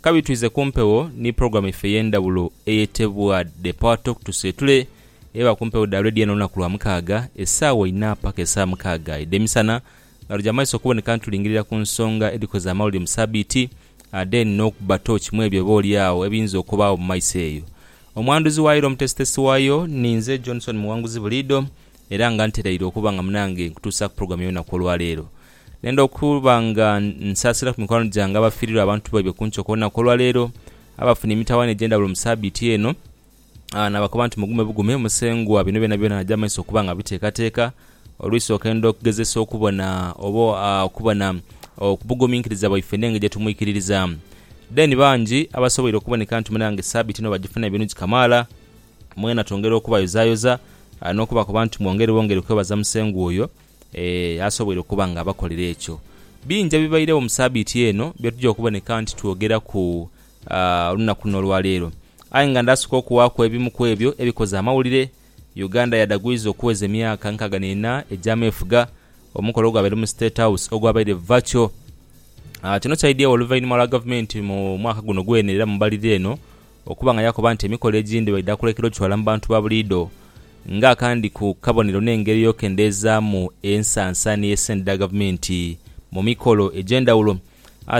Kabi twize ku mpewo ni pulogulaamu yaife ey'endhawulo eyetebwa The Power Talk tuseetule eba ku mpewo dha Radio Ena olunaku lwa mukaaga esaawa inha paka esaawa mukaaga edh'emisana nga tuja mumaiso okuboneka nitulingirira ku nsonga edhikoze amawulire mu sabiiti ate n'okuba tooki mwebyo oba olyagho ebiyinza okubaagho mu maiso eyo. Omwanduzi waayo era omutesitesi waayo ninze Johnson Muwanguzi buliidho era nga nteraire okuba nga munange nkutuusaaku pulogulaamu ey'olunaku olwaleero. Nenda okuba nga nsaasira ku mikwano gyange abafiirirwa abantu baibwe ku nkyo ku lunaku olwa leero, abafuna emitawaana egy'endhawulo mu saabiiti eno. Naabakoba nti, Mugume bugume, Musengwa bino byonabyona aja mu maiso okuba nga abiteekateeka. Olw'isooka enda okugezesa okubona oba okubona obuguminkiriza bwaife n'engeri gye tumwikiririzamu. Then bangi abasoboire okuboneka nti mwena nga saabiiti eno bagifunamu ebirungi kamaala, mwena twongera okubayozayoza n'okubakoba nti mwongere bwongere kwebaza Musengwa oyo. Ee, asoboire okuba ng'abakolera ekyo. Bingi ebibairegho mu sabiiti eno bye tuja okuboneka nti twogeraku olunaku luno olwa leero. Aye nga ndaasooka okuwaaku ebimu ku ebyo ebikoze amawulire. Uganda yadagwiza okuweza emyaka nkaaga n'ena egy'ameefuga omukolo ogwabaire mu State House ogwabaire virtual. Kino kyaidhiewo oluvainhuma lwa gavumenti mu mwaka guno gwene era mu mbalirira eno Okuba nga yakoba nti emikolo egindi baidha kulekera ocwala mu bantu ba buliidho nga akandi ku kabonero n'engeri ey'okendeezaamu ensansa ni esente dha gavumenti mu mikolo egy'endhawulo.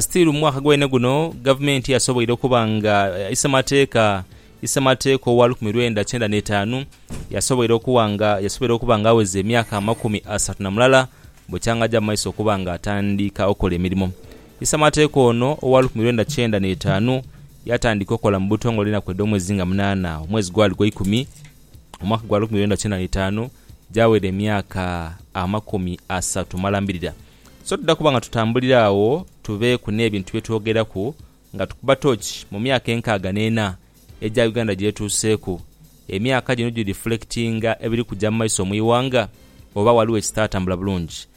Still mu mwaka gwene guno gavumenti yasoboire okuba nga isemateeka isemateeka owa lukumi lwenda kyenda n'etaanu yasoboire okuwa nga yasoboire okuba nga aweza emyaka amakumi asatu na mulala bwe kyang'aja mu maiso okuba nga atandika okola emirimo. Isemateeka ono owa lukumi lwenda kyenda n'etaanu Yaatandika okola mu butongole enaku edh'omwezi nga munaana, omwezi gwali gwa ikumi, mu mwaka gwa lukumi lwenda kyenda n'eitaanu, gyawera emyaka amakumi asatu mala mbirira. So tudha kuba nga tutambulira agho tubeeku n'ebintu bye twogeraku nga tukuba toochi mu myaka enkaaga n'ena egya Uganda gy'etuuseeku. Emyaka gino girifulekitinga ebiri kuja mu maiso mu ighanga? Oba ghaligho ekitaatambula bulungi?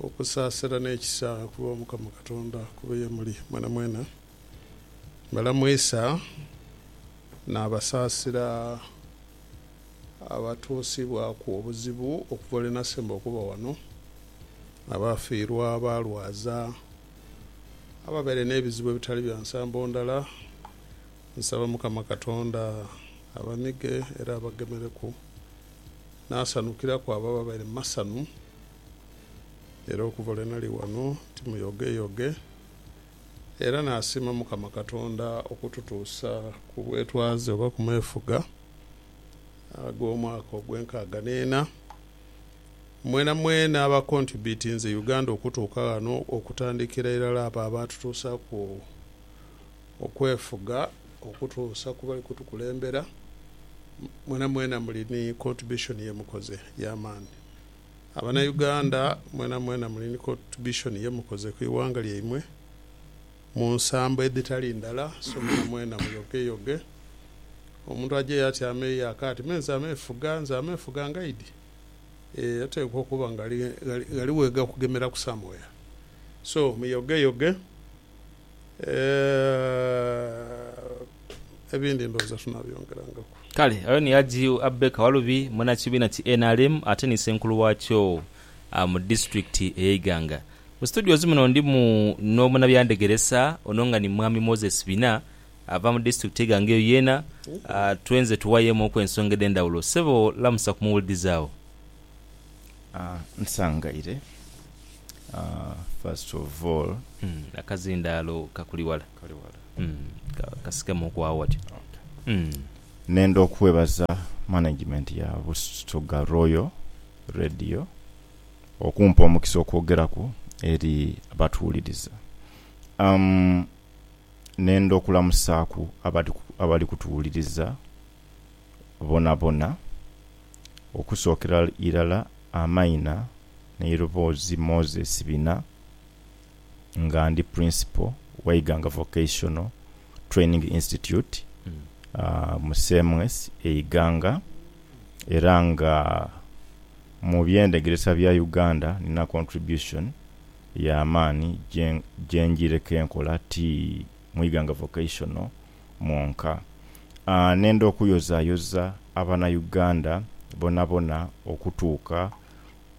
Okusaasira n'ekisa okuva gho Mukama Katonda kube ye muli mwenamwena. Balamu Isa n'abasaasira abatuusibwaku obuzibu okuva lwe nasemba okuba ghano, abaafiirwa, abaalwaza, ababaire n'ebizibu ebitali bya nsambo ndala. Nsaba Mukama Katonda abamige era abagemereku. naasanhukilaku abo ababaire mu masanhu. Era okuva lwe nali ghano ti muyogeyoge. Era naasiima Mukama Katonda okututuusa ku bwetwaze oba ku meefuga ag'omwaka ogw'enkaaga n'ena. Mwenamwena abakontubitinze Uganda okutuuka ghano okutandikira irala abo abaatutuusaaku. okwefuga okutuusa ku bali kutukulembera. Mwena mwena muli ni contribution ye mukoze ya maani. Abana Uganda mwena mwena muli ni contribution ye mukoze ku ighanga lyaimwe mu nsambo edhitali ndala so mwena mwena muyoge yoge. Omuntu ajeyo ati ameeyo aka ati me nze ameefuga, nze ameefuga ngaidi eeh oteekwa okuba nga ghali ghali ghali wegakugemeraku somewhere so muyoge yoge. Eeh, ebindi ndhowooza tunabyongerangaku. Kale oyo ni Hajji Abbey Kawalubi munakibiina ki nrm ate ni Ssenkulu waakyo mu disitulikiti eye Iganga. Mu studios muno ndimu n'omunabyandegeresa ono nga ni Mwami Moses Bina ava mu disitulikiti ye Iganga eyo yeena twenze tuwayemuuku ensonga edhendawulo. Ssebo lamusa ku muwulidizi awo. Nsangaire, first of all. Akazindaalo kakuli wala. Kali wala. Kasikemu ku agho ghati. Okay. Nenda okwebaza management ya Busoga Royal Radio okumpa omukisa okwogeraku eri abatuwuliriza. Nenda okulamusaaku abali kutuwuliriza boonaboona, okusookera irala Amaina n'eiroboozi Moses bina nga ndi Principal wa Iganga Vocational Training Institute mu CMS e Iganga era nga mu by'endhegeresa bya Uganda nina contribution ya maani gye njiireku enkola ti mu Iganga Vocational mwonka aah nenda okuyozayoza abana Uganda bonabona okutuuka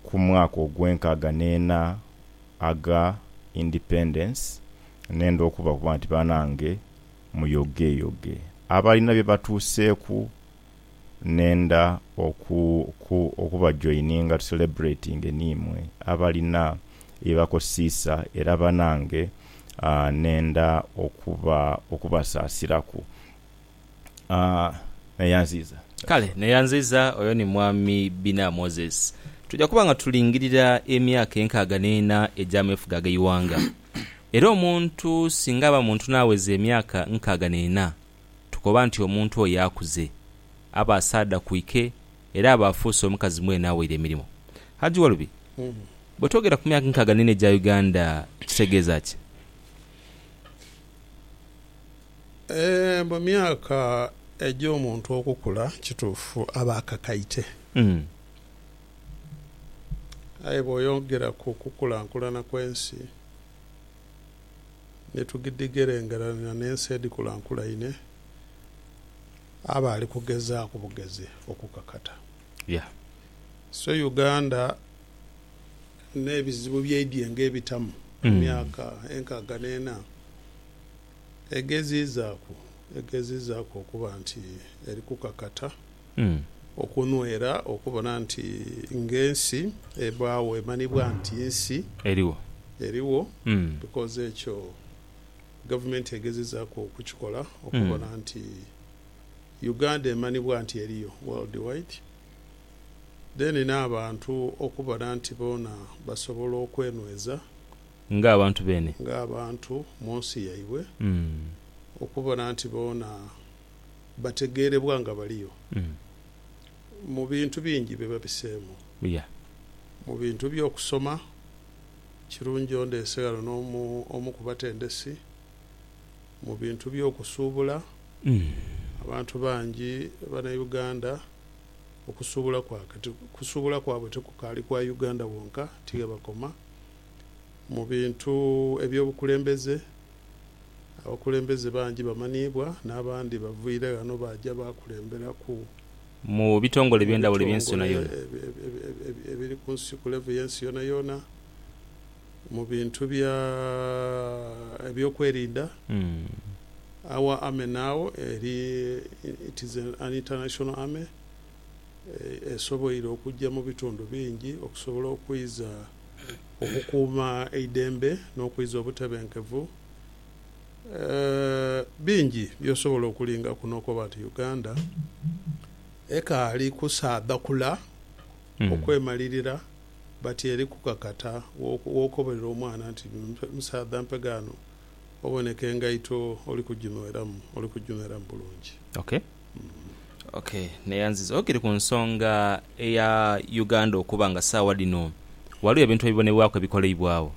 ku mwaka ogwenkaaga neena aga independence nenda okubakuba nti banange muyogeyoge abalina byebatuuseeku nenda oku ku okubajoininga tu celebratinge niimwe abalina byebakosiisa era banange aah nenda okuba okubasaasiraku aah Neyanziiza That's Kale all. Neyanziiza oyo ni Mwami Bina Moses. Tuja kuba nga tulingirira emyaka enkaaga n'ena egy'ameefuga ag'eighanga. Era omuntu singa aba muntu n'aweza emyaka nkaaga n'ena, tukoba nti omuntu oyo akuze, aba asaadha ku ike era aba afuuse omukazi mwene aweire emirimo. Hajji Walubi, bwe twogera ku myaka nkaaga n'ena egya Uganda kitegeeza ki? Mu myaka egy'omuntu okukula kituufu aba akakaite. Aye bw'oyogera ku kukulankulana kw'ensi, ni tugidhigerengeranira n'ensi edhikulankulaine, aba ali kugezaaku bugezi okukakata. Yeah. So Uganda n'ebizibu byaidhie ng'ebitamu mu myaka enkaaga n'ena, egeziizaaku egeziizaaku okuba nti eri kukakata. Okunwera okubona nti ng'ensi ebaagho emanhibwa nti nsi erigho because ekyo gavumenti egezezaaku okukikola okubona nti Uganda emanhibwa nti eriyo world wide then n'abantu okubona nti boona basobola okwenweza ng'abantu munsi yaibwe okubona nti boona bategeerebwa nga baliyo mu bintu bingi bye babiseemu. Mu bintu by'okusoma, kirungi ondeese ghano n'omu omu ku batendesi. Mu bintu by'okusuubula, abantu bangi Banauganda okusuubula kwa kati kusuubula kwabwe tikukaali kwa Uganda wonka, ti ghe bakoma. Mu bintu eby'obukulembeze. Abakulembeze bangi bamanhiibwa n'abandi baviire ghano baaja baakulemberaku. Mu bitongole eby'endhawulo eby'ensi yoonayoona. Mu bitongole ebiri ku nsi, ku levo y'ensi yoonayoona, mu bintu bya, eby'okwerinda, our army now eri, it is an international army, esoboire okujja mu bitundu bingi okusobola okwiza. okukuuma eidembe n'okwiza obutebenkevu. Bingi by'osobola okulingaku n'okoba nti Uganda ekaali kusaadhakula okwemalirira but eri kukakata. W'okobolera omwana nti musaadha mpe ghano oboneka engaito oli kuginweramu, oli kuginweramu bulungi. Ok neyanziza okiri ku nsonga eya Uganda okuba nga sawa dhino ghaligho ebintu ebibonebwaku ebikoleibwagho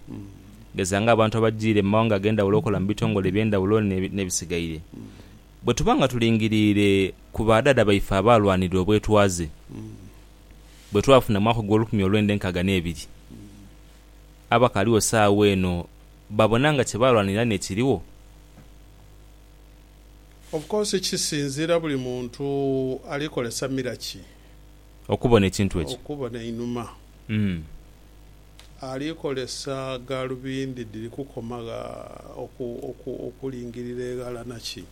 geza nga abantu abajire mu mawanga agendhaghulo okola mu bitongole ebyendhaghulo ne bisigaire bwe tuba nga tulingirire ku ba dhaadha baife abaalwanirira obwetwaze bwe twafuna mu mwaka ogwolukumi olwendha enkaaga ne biri abakaligho sawa eno babona nga kye baalwanirira nekirigho? Of course kisinziira buli muntu ali kolesa mira ki Okubona ekintu ekyo. okubona einhuma. Ali kolesa galubindi dhiri kukoma gha oku oku okulingirira eghala naki.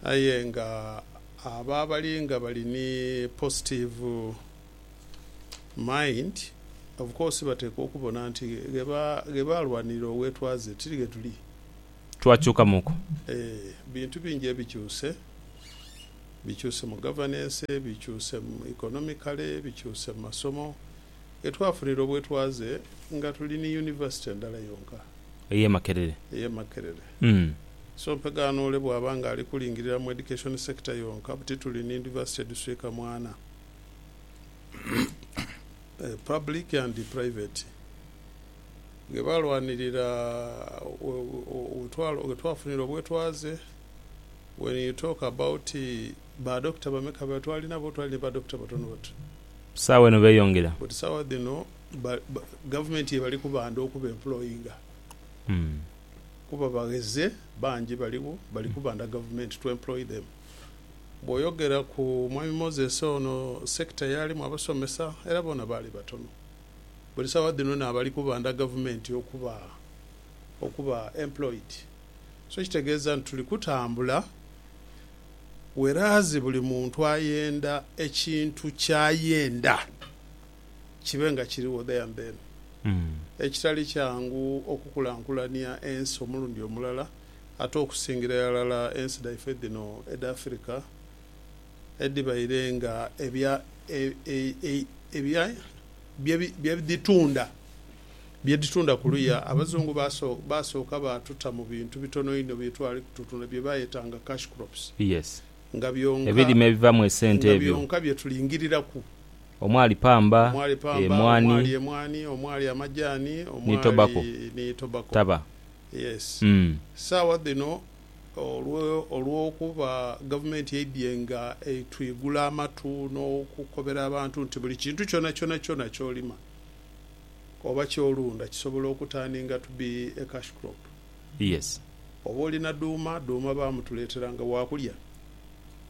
Aye nga abo abali nga bali ni positive mind of course bateekwa okubona nti ghe ba ghe balwanirira obwetwaze tiri ghe tuli. twakyukamuku. Ebintu bingi ebikyuse, bikyuse mu gavanense, bikyuse mu ikonomikale, bikyuse mu masomo, ghe twafunira obwetwaze nga tuli ni yunivasite ndala yonka. Ey'e Makerere. Ey'e Makerere. So mpegaano ole bw'aba nga ali kulingirira mu education sector yonka buti tuli ni yunivasite edhuswika mu ana, public and private. Ghe baalwanirira ghe twafunira obwetwaze, when you talk about ba doctor bameka be twali nabo, twali ni ba doctor batono batu. Ku saawa eno beeyongera. But saawa dhino gavumenti ye bali kubanda okuba employinga kuba bagheze bangi baligho bali kubanda gavumenti to employ them. Bw'oyogera ku Mwami Moses ono sector y'alimu abasomesa era boona baali batono. buli sawa dhino nabali kubanda gavumenti okuba okuba employed so kitegeza nti tuli kutambula whereas buli muntu ayenda ekintu kyayenda kibe nga kiriwo there and then ekitali kyangu okukulankulania ensi omulundi omulala ate okusingira iralala ensi dhaife dhino edha Africa edhibaire nga ebya, ebya, bye dhitunda, bye dhitunda kuluya. Abazungu baasooka baatuta mu bintu bitono inho bye twali kututunda bye baayetanga cash crops, nga byonka, nga byonka bye tulingiriraku. Omwali pamba, omwali emwaani, omwali amajaani, omwali ni tobacco. Yes. Saawa dhino. olw'okuba gavumenti eidhye nga etwigula amatu n'okukobera abantu nti buli kintu kyonakyona ky'olima oba ky'olunda kisobola oku turning to be a cash crop. Yes. Oba olina dhuuma, dhuuma baamutuleetera nga waakulya.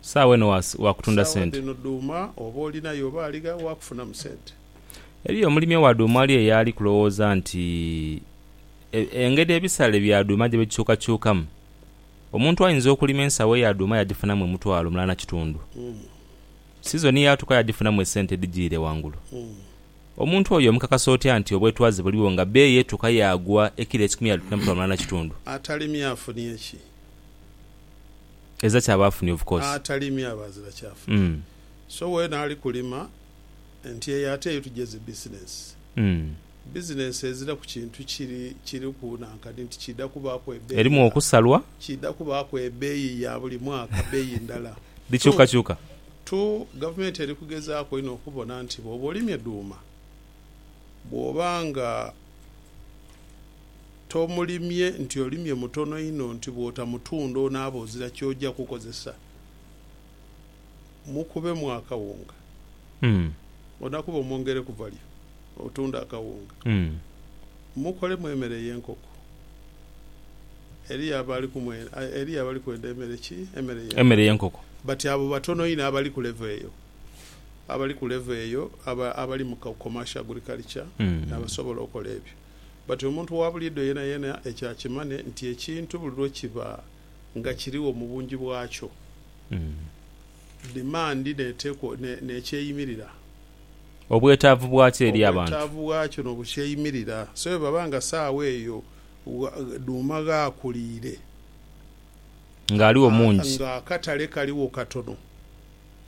Saawa eno waakutunda sente. Saawa dhino dhuuma oba olina ye oba aligha waakufunamu sente. Eriyo omulimi owa dhuuma ali eyo ali kulowooza nti Engeri ebisale bya dhuuma gye bikyukakyukamu. Omuntu ayinza okulima ensawo eya dhuuma yagifunamu omutwalo mulala na kitundu. Sizoni yaatuuka yagifunamu esente edhijiire ghangulu. Omuntu oyo omukakasa otya nti obwetwaze buliwo nga bbeeyi etuuka yaagwa ekilo ekikumi yadhifuna mutwalo mulala na kitundu? Atalimye afunye ki? Ezira kyaba afunye of course. Atalimye aba azira ky'afunye. So weena ali kulima nti eyo ate eyo tugye zi bizinensi. Bizinensi eziraku kintu kiri kiriku na nkani nti kiidha kubaaku ebeeyi Erimu nga okusalwa. kiidha kubaaku ebeeyi ya buli mwaka, beeyi ndala. Tu, Dhikyukakyuka. tu, gavumenti eri kugezaaku inho okubona nti bw'oba olimye dhuuma, bw'oba nga tomulimye, nti olimye mutono inho, nti bw'otamutunda onaaba ozira ky'oja kukozesa. mukubemu akawunga onakuba omwongere kuvalyo otunde akawunga mukolemu emere eyenkoko eriyo abali kwenda emere ki emere yenkoko but abo batono inho abali ku level eyo abali ku level eyo abali mu commercial agriculture nabasobola okola ebyo but omuntu wabulido yenayena ekyo akimane nti ekintu buli lwekiba nga kirigho mu bungi bwakyo, dimandi n'eteekwa n'ekyeyimirira. Obwetaavu bwakyo eri abantu. Obwetaavu bwakyo n'obukyeyimirira. So bwe baba nga saagho eyo dhuuma ghaakuliire. Ng'aligho mungi. Ng'akatale kaligho katono.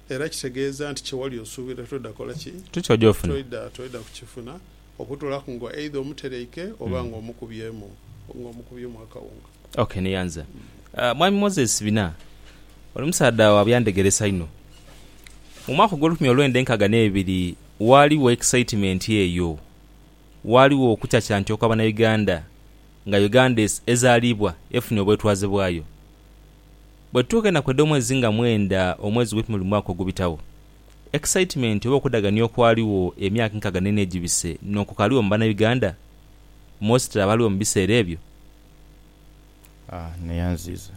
Era kitegeeza nti kye wali osuubira toidha kukola ki? Toidha kukifuna. okutoolaku nga eidha omuteleike oba nga omukubyemu nga omukubyemu akawunga. Ok neyanza. Mwami Moses Bina, oli musaadha wa byandhegeresa inho. Mu mwaka ogw'olukumi olwenda enkaaga n'ebiri waaliwo excitement eyo, waaliwo okucacantya okwa Banauganda nga Uganda ezaalibwa efunye obwetwaze bwayo. Bwetutuuka enaku edh'omwezi nga mwenda omwezi gw'ekumibiri mu mwaka ogubitagho, Excitement oba okudhagania okwaligho emyaka enkaaga n'ena egibise n'okukaaliwo mu Banauganda, mostly abaaliwo mu biseera ebyo? Aah neyanziiza.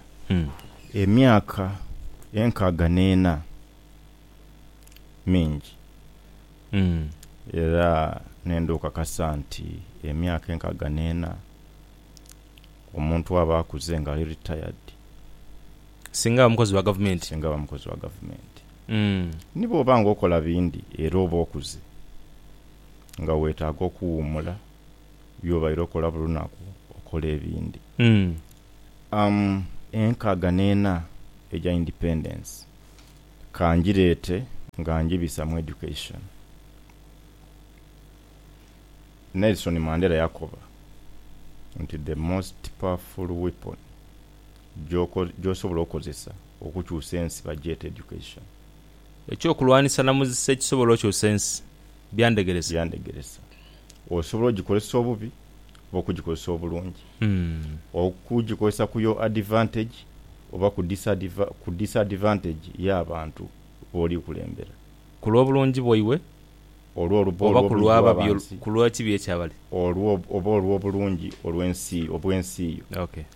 Emyaka enkaaga n'ena mingi era nenda okakasa nti emyaka enkaaga n'ena omuntu aba akuze nga ali retired. Singa aba mukozi wa Gavumenti. Singa aba mukozi wa Gavumenti. Ni bw'oba ng'okola bindi era oba okuze, nga weetaaga okuwuumula by'obaire okola buli lunaku okole ebindi. Am. Enkaaga n'ena eja Independence ka ngireete nga ngibisa mu Education, Nelson Mandela yakoba nti, The most powerful weapon gy'osobola okukozesa okukyusa ensi bagyete education. Eky'okulwanisa namuzisa ekisobola okyusa ensi byandegeresa. Byandegeresa. Osobola ogikozesa obubi oba okugikozesa obulungi. Okugikozesa ku your advantage oba ku ku disadvantage ya bantu b'oli kulembera. Ku lw'obulungi bwaibwe oba ku lw'ababi ku lw'ekibi eky'abali. Oba olw'obulungi olw'ensi obw'ensi yo.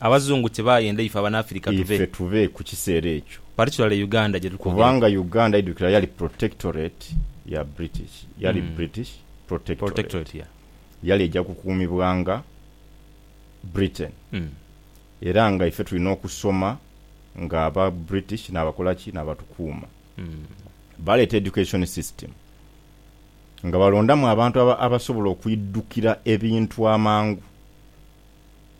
Abazungu kyebayenda ife Abanafirika tube. Ife tube ku kiseera ekyo. Particularly Uganda gyetutwogereku. Kubanga Uganda idukira yali protectorate ya British. Yali British protectorate. Yali eja kukuumibwanga Britain. Era nga ife tulina okusoma nga aba British nabakola ki? Nabatukuuma. Baleeta education system nga balondamu abantu abasobola okwidukira ebintu amangu.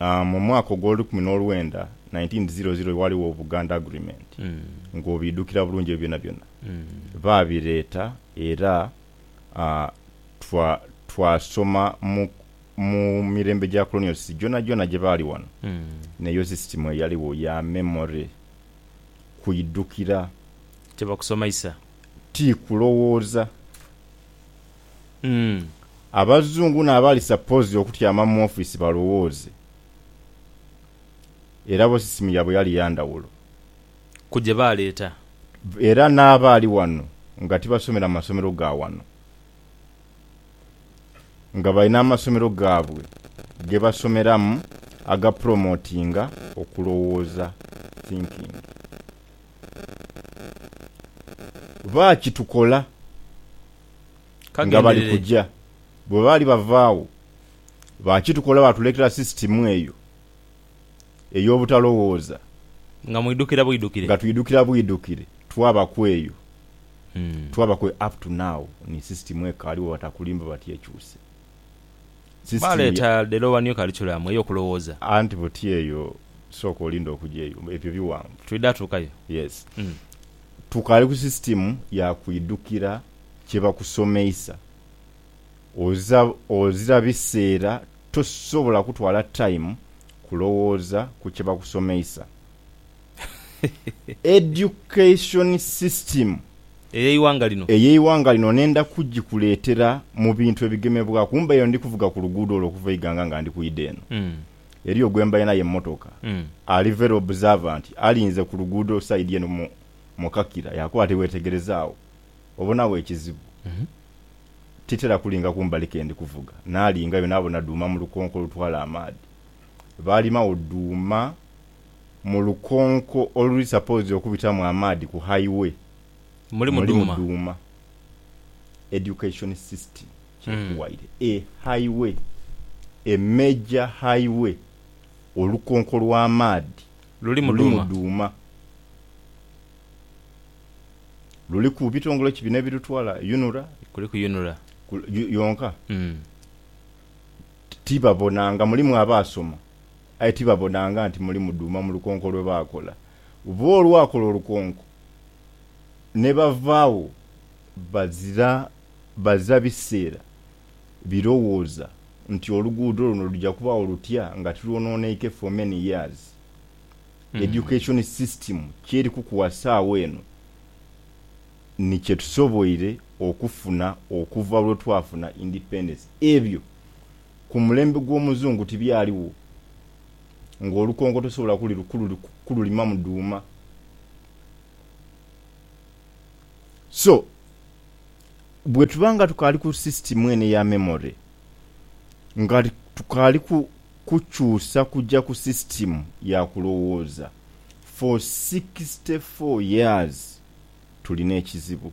mu mwaka ogw'olukumi n'olwenda, 1900, ghaligho Obuganda Agreement, ng'obiidhukira bulungi ebyo byonabyona. Baabireeta era twasoma mu mirembe gya colonials gyonagyona gye baali ghano, n'eyo sisitimu eyaligho ya memory, kuidhukira. Tibakusomaisa? Ti kulowooza. Umm abazungu na bali supposed okutyama mu office balowooze era bo system yabwe yali yandawulo. Ku gye baaleeta. Era n'abaali wano nga tibasomera mu masomero ga wano, nga balina amasomero gaabwe gebasomeramu aga promotinga okulowooza, thinking. Baakitukola nga bali kuja. Bwe baali bava agho, baakitukola baatuleetera sisitimu eyo ey'obutalowooza. Nga mwidhukira bwidhukire. Nga twidhukira bwidhukire. Twabaku eyo. Twabaku eyo up to now. Ni sisitimu ekaaligho batakulimba batyekyuse. Sisitiini. Baaleeta Delowa New Curriculum ey'okulowooza. Anti buti eyo, sooka olinde okuja eyo. Ebyo bighanvu. Twidha tuukayo. Yes. Tukaali ku sisitiimu ya kwidhukira kye bakusomeisa. Oza, ozira biseera tosobola kutwala time kulowooza ku kye bakusomeisa. Education system ey'eighanga lino. Ey'eighanga lino nenda kugikuleetera mu bintu ebigemebwaku. Mbaire eno ndi kuvuga ku luguudo olwo okuva e Iganga nga ndi kwidha eno. Eriyo gwe mbaire naye mu motoka ali very observant, alinze ku luguudo side eno mu mu kakira yaakoba ati, Weetegerezaagho, obonagho ekizibu? Titera kulinga kumbali ke ndi kuvuga. Naalingayo naabona dhuuma mu lukonko olutwala amaadhi. Baalimagho dhuuma. mu lukonko oluli suppose okubitamu amaadhi ku highway mulimu dhuuma. Education system kyekuwaire a highway a major highway olukonko lwa maadhi lulimu dhuuma. Luliku ebitongole ki bino ebirutwala UNRA yonka tibabona nga mulimu abaasoma. aye tibabonanga nti muli mudhuuma mu lukonko lwe baakola. Bbo olwakola olukonko ne bavaagho bazira bazira biseera birowooza nti oluguudo luno luja kubaagho lutya nga tilwonooneike for many years. Education system ky'eri kukuwa saagha eno ni kye tusoboire okufuna okuva lwe twafuna independence. Ebyo ku mulembe gw'omuzungu tibyaligho ng'olukonko tosobola kulimamu dhuuma. So, bwetuba nga tukaali ku sisitimu eno eya memory, nga tukaali kukyusa kuja ku sisitimu ya kulowooza for sixty four years, tulina ekizibu.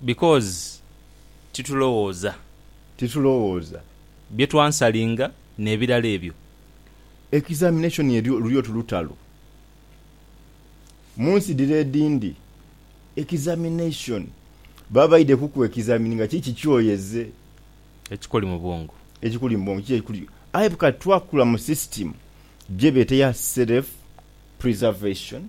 Because titulowooza. Titulowooza. Bye twansalinga n'ebirala ebyo. Examination elyo luli oti lutalo. Mu nsi dhire edhindi, examination, baba baidhe kuku examininga kiki kyoyeze. Ekikuli mu bwongo. Ekikuli mu bwongo, kiki ekikuli. Aye kati twakula mu system gyebeeta eya self preservation.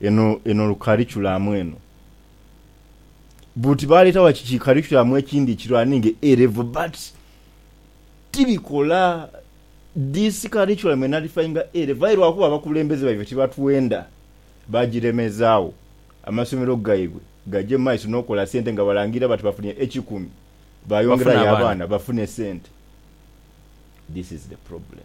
eno eno lukarikulamu eno. Buti baleeta wa ki kikarikulamu ekindi ekiraniinga A level but tibikola this curriculum enalifayinga A level aye lwakuba abakulembeze baibwe tibatwenda bagiremezaagho amasomero gaibwe gaje mumaiso n'okola sente nga balangira bati bafunye ekikumi Bafune bayongerayo abaana. abaana bafune sente. This is the problem.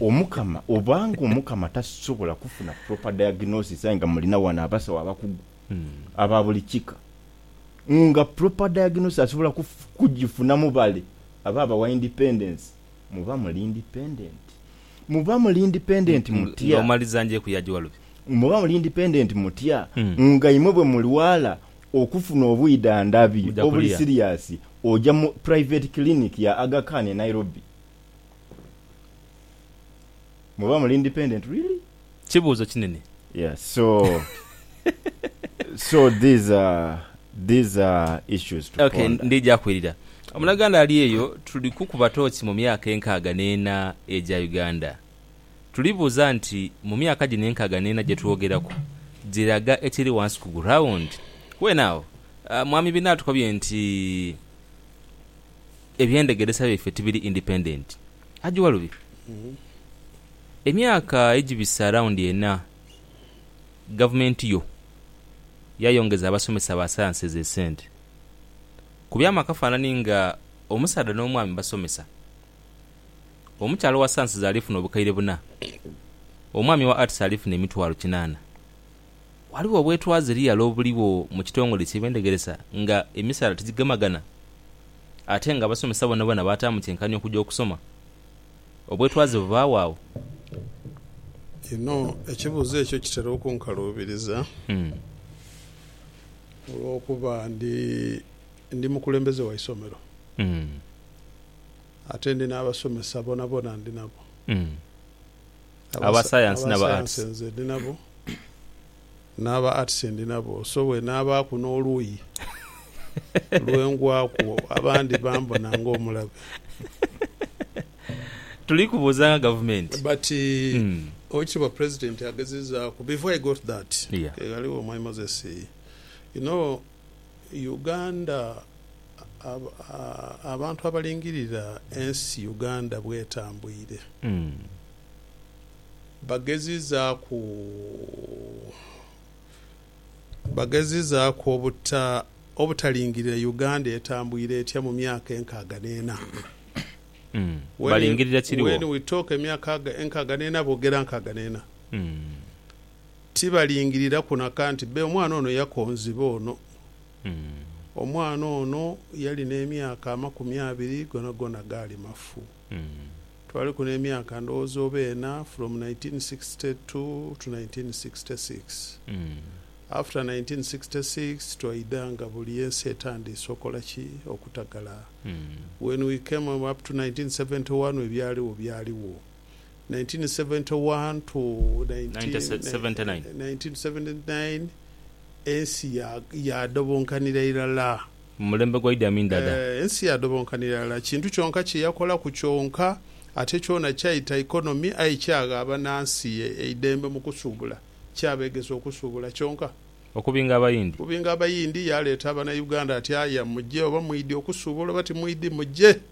Omukama obanga Omukama tasobola kufuna proper diagnosis aye nga mulina wano abasawo abakugu aba buli kika nga proper diagnosis asobola kujifuna mubale aba abawa independence muba muli independent muba muli independent mutya muba muli independent mutya nga imwe bwemulwala okufuna obwidhandhabi obuli serious oja mu private clinic ya Aga Khan e Nairobi. Muba muli independent really? Kibuuzo kinene. Yeah so so these are these are issues to okay, ponder. Ndija kwirira omunaganda ali eyo. Tuli kukuba tooki mu myaka enkaaga n'ena egya Uganda. Tuli buuza nti mu myaka gino enkaaga n'ena gye twogeraku giraga ekiri wansi ku ground? Well now, mwami Binatukobye nti. Ebyendhegeresa byaife tibiri independent aje walubi emyaka egibisa around ena gavumenti yo yayongeza abasomesa ba sciences esente kubyamu akafanani nga omusaadha nomwami basomesa omukyala owa sciences alifuna obukaire buna omwami owa arts alifuna emitwalo kinana Ghaligho obwetwaze liyala obuligho mu kitongole ky'ebyendegeresa nga emisaala tigigemagana ate nga abasomesa bonabona baataamu kyenkanhi okuja okusoma. Obwetwaze bubaagho agho? Inho ekibuuzo ekyo kitera okunkaluubiriza olw'okuba ndi ndi mukulembeze wa isomero ate ndi n'abasomesa bonabona ndi nabo. aba sayansi n'aba arts. Aba sayansi nze ndi nabo, n'aba arts ndi nabo, so bw'enaabaaku n'oluuyi lwe ngwaku abandi bambona ng'omulabe. Tuli kubuuzanga gavumenti. But owekitiibwa president agezezaaku before I got that, ghaligho Mwami Moses, you know, Uganda Abantu abalingirira ensi Uganda bwetambwire bagezizaaku bagezizaaku obutalingirira Uganda etambwire etya mu myaka enkaaga n'ena. When we talk emyaka enkaaga n'ena boogera nkaaga n'ena. Tibalingiriraku nakanti be omwana ono yakonziba ono. Omwana ono yali n'emyaka amakumi abiri gonagona gaali mafu. Twaliku n'emyaka ndowooza oba ena from nineteen sixty two to nineteen sixty six. After nineteen sixty six twaidha nga buli ensi etandiise okola ki? Okutagala. When we came up to nineteen seventy one ebyaligho byaligho. 1971 to 1979 1979 ensi ya yaadhobonkanira irala. Mu mulembe gwa Idi Amin Dada. Eeh ensi yaadhobonkanira irala. Kintu kyonka kye yakolaku kyonka ate kyona kyaita economy aye kyagha banansi eidembe mu kusuubula. Kyabeegesa okusuubula kyonka. Okubinga Abayindi. Okubinga Abayindi, yaaleeta Abanauganda ati, Aye muje oba mwidhi okusuubula oba timwidhi muje.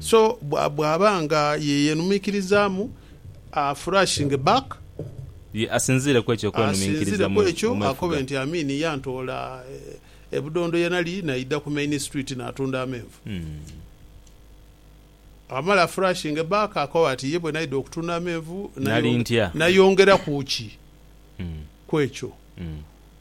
So bw'aba nga ye yeenumiikirizaamu, afurashinge back, Ye asinziire ku ekyo okwenuminkiriza mu mwefuga. akobe nti Amin yantoola e Budondo ye nali naidha ku Main Street naatunda amenvu. Bw'amala afurashinge back, akobe ati ye bwe naidha okutunda amenvu Nali ntya? nayongeraku ki ku ekyo?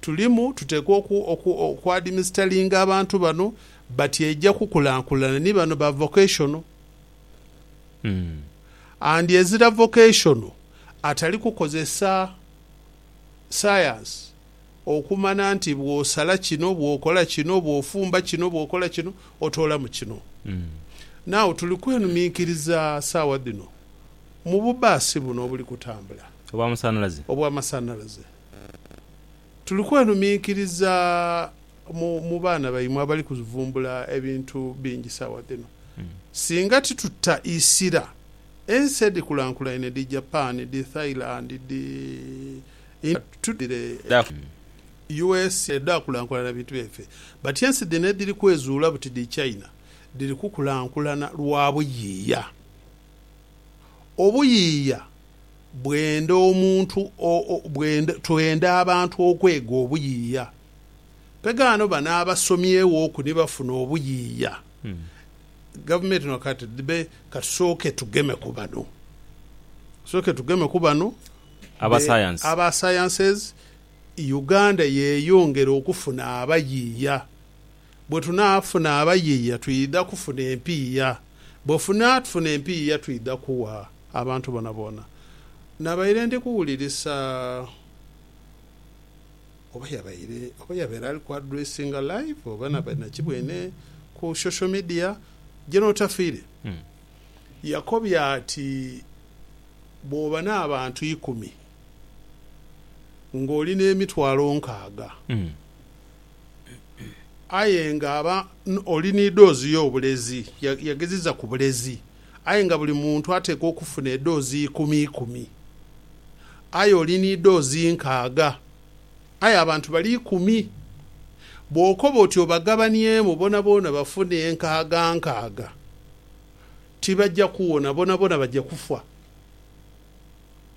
tulimu tuteekwa oku, oku, okwadimisteringa abantu bano bati eija kukulankulana. Ni bano ba vocational. And ezira vocational atali kukozesa science okumana nti bwosala kino, bwokola kino, bwofumba kino, bwokola kino, otoolamu kino. Now tuli kwenuminkiriza saawa dhino mu bu bus buno obuli kutambula. Obwa masanalaze. Obwa masanalaze. Tuli kwenuminkiriza mu baana baimwe abali kuvumbula ebintu bingi sawa dhino. Singa tituta isira, ensi edhikulankulaine dhi Japan, dhi Thailand, dhi India tudhire e usa edhakulankulana bintu byaife. But ensi dhino edhiri kwezuula buti dhi China dhiri kukulankulana lwa buyiiya. Obuyiiya Bwenda omuntu o, o, bwenda, twenda abantu okwega obuyiiya. Pegaano bano abasomyeghoku ni bafuna obuyiiya. Gavumenti eno kati dhibe, kasooke tugeme ku bano. Kasooke tugeme ku bano. Aba Be, science. aba sciences, Uganda yeyongere okufuna abayiiya. Bwe tunaafuna abayiia twidha kufuna empiiya. Bwe funaatufuna empiiya twidha kugha abantu boonaboona. Nabaire ndi kuwulirisa oba yabaire oba yabaire ali ku addressinga live oba nabaire na ki bwene ku social media, General Tafiire yakobye ati bwooba n'abantu ikumi ng'oli n'emitwalo nkaaga, Aye nga aba oli ni doozi yo obulezi, yageziza ku bulezi. Aye nga buli muntu atekwa okufuna edoozi ikumi ikumi. Aye oli ni doozi nkaaga. Aye abantu bali ikumi. Bwokoba oti obagabaniemu bonaboona bafune enkaaga nkaaga, tibaja kuwona, bonaboona baja kufa.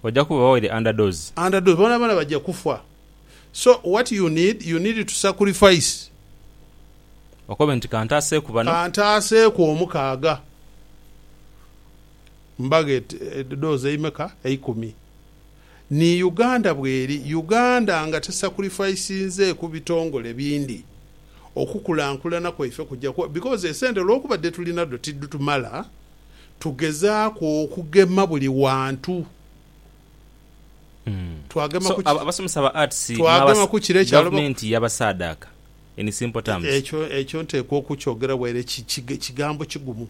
Oja kuba oli under doozi. Under doozi, bonaboona baja kufa. so what you need you need to sacrifice. Okobe nti kantaaseeku bano. Kantaaseeku omukaaga. Mbaghe dhoozi eimeka? Eikumi. Ni Uganda bweri. Uganda nga tesacrificinzeeku bitongole bindi, okukulankulana kwaife kuja ku because esente olwokuba dhituli nadho tidhitumala, tugezaaku okugema buli wantu. Twagema so ku ki- abasomesa ba arts twagema ku kire kyaloba gavumenti yabasaadaaka in simple terms ekyo ekyo nteekwa okukyogera waire ki- ki- kigambo kigumu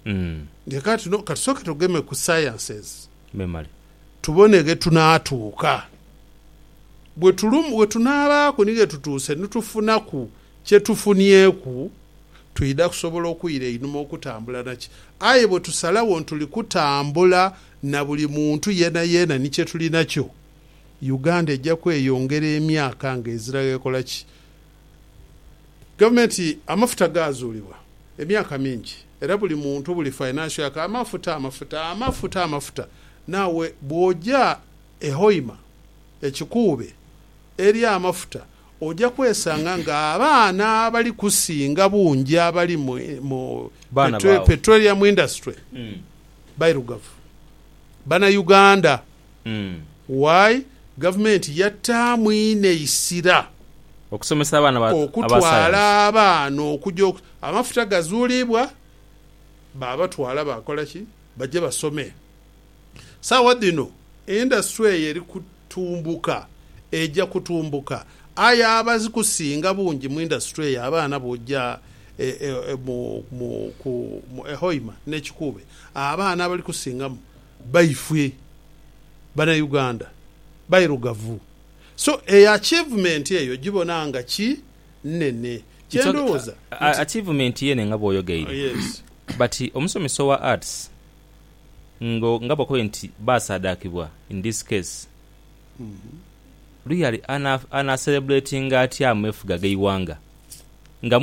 mm nti kati tuno katusooke tugeme ku sciences memale tubone ghe tunaatuuka bwe tulum we tunaabaaku ni ghe tutuuse ni tufunaku kye tufunyeeku twidha kusobola okwira einhuma okutambula naki aye bwe tusalagho ni tuli kutambula na buli muntu yeenayeena ni kye tuli nakyo, Uganda eja kweyongera emyaka nga ezira ghekola ki? Gavumenti amafuta gaazuulibwa emyaka mingi era buli muntu, buli financial aka amafuta, amafuta, amafuta, amafuta. Naawe bw'oja e Hoima, e Kikuube, eri amafuta, Oja kwesanga nga abaana abali kusinga bungi abali mu petroleum industry bairugavu, bana Uganda. Why? Gavumenti yattaamu inho eisira okutwala abaana okuja, amafuta gazuulibwa babatwala bakola ki? Baje basome. Saagha dhino indasitule eyo eri kutumbuka, eja kutumbuka. Aye abazikusinga bungi mu indasitule eyo abaana bwoja e Hoima ne Kikuube, abaana abali kusingamu baifwe Banauganda bairugavu. So eyo achievement eyo gibona nga ki nene. Kye ndowooza nti. Achievement yene nga bwoyogeire. Yes. But omusomesa owa Arts. ngo nga bakobe nti baasaadhaakibwa, in this case, Luyali ana, ana celebratinga atya ameefuga g'eighanga? Nga.